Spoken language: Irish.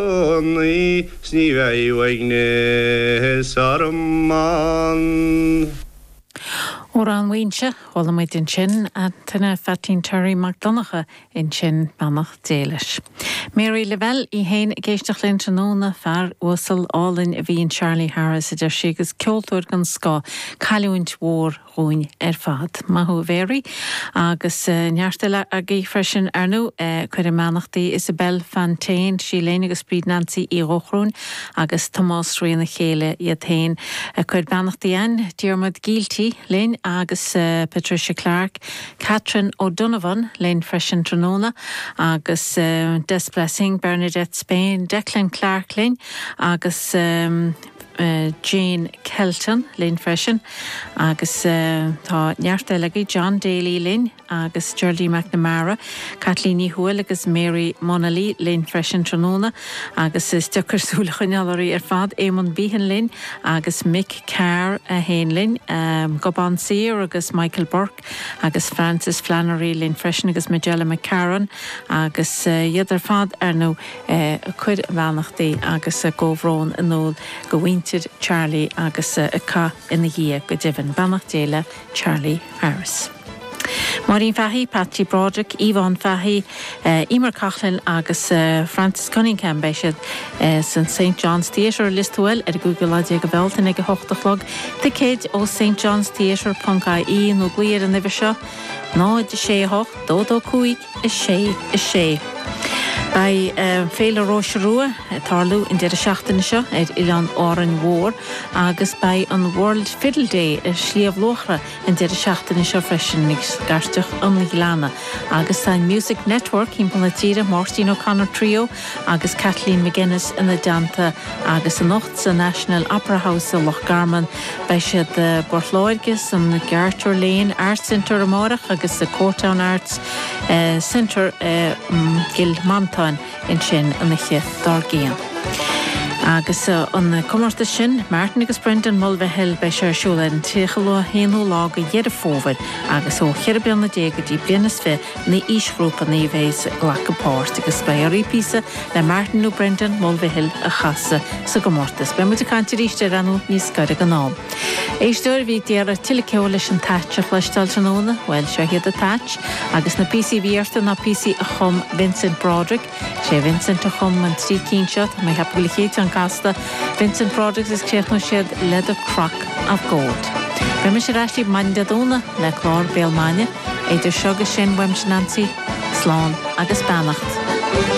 gcónaí 's ní bheidh uaigneas orm ann. Amhrán Mhaínse, chuala muid ansin Antaine Phaitín Terry Mac Donncha ansin, beannacht Dé leis. Mary Lavelle í fhéin ag éisteacht linn tráthnóna, fear uasal álainn a bhí in Charlie Harris a deir sí agus ceoltóir den scoth, cailliúint mhór dhúinn ar fad. Maith thú a Mhéaraí. Agus neart eile agaibh freisin ar ndóigh ag cur a mbeannachtaí, Isabelle Fantain, sí linn agus Bríd Nansaí Uí Dhóchrúin agus Tomás Rí na Céille iad féin ag cur beannachtaí ann, Diarmuid Gielty linn agus Patricia Clarke, Catherine O'Donovan linn freisin tráthnóna agus Des Blessing, Bernadette Spain, Declan Clarke linn agus. Jane Kelton linn freisin agus tá neart eile agaibh, John Daly linn agus Geraldine McNamara, Caitlín Ní Thuathail agus Mary Munnelly linn freisin tráthnóna agus is deacair súil a choinneáil oraibh ar fad, Éamonn Behan linn agus Mick Carr é fhéin linn, Gobán Saor agus Michael Burke. agus Frances Flannery linn freisin agus Majella McCarron agus iad ar fad ar ndóigh ag cur a mbeannachtaí agus a gcomhbhrón in iúl do mhuintir Charlie agus ag caitheamh ina dhiaidh go deimhin. Beannacht Dé le Charlie Harris. Máirín Fahy, Patsy Broderick, Yvonne Fahy, Eimear Coughlan agus Francis Cunningham. Beidh siad san St John's Theatre, Listowel ar an gcúigiú lá déag de Bhealtaine ag a hocht a chlog. Ticéid ó stjohnstheatre ponc IE nó glaoigh ar an uimhir seo, 0 6 8 22 5 6 6. Beidh Féile Róise Rua ag tarlú an deireadh seachtaine seo ar Oileán Árainn Mhór agus beidh an World Fiddle Day ar Shliabh Luachra an deireadh seachtaine seo freisin i Scairteach an Ghleanna agus tá an Music Network thimpeall na tíre, Máirtín O'Connor Trio agus Kathleen MacInnes ina dteannta agus anocht sa National Opera House i Loch Garman beidh siad i bPort Láirge san Garter Lane Arts Centre amárach agus sa Courtown Arts Centre i gCill Mhantáin. ansin an oíche dár gcionn. Agus an comórtas sin, Martin agus Brendan Mulvihill, beidh sé ar siúl ar an 31ú lá de Dheireadh Fómhair agus ó cheithre bliana déag go dtí bliain is fiche an aoisghrúpa a bheas ag glacadh páirt agus beidh oraibh píosa le Martin nó Brendan Mulvihill a chasadh sa gcomórtas. Beidh muid ag caint arís air ar ndóigh níos gaire don am. Éisteoir a bhí ag iarraidh tuilleadh ceoil leis an Táin a chloisteáil tráthnóna, bhuel, seo hiad an Táin, agus na píosaí a bhí orthu ná píosaí a chum Vincent Broderick. Sé Vincent a chum an trí cinn seo, tá mé ag ceapadh gurb é an chéad cheann casta Vincent Broderick is críochnóidh siad le The Crock of Gold. Beidh mise ar ais agaibh maidin Dé Domhnaigh le clár Béal Maidine, idir seo agus sin uaimse Neansaí slán agus beannacht.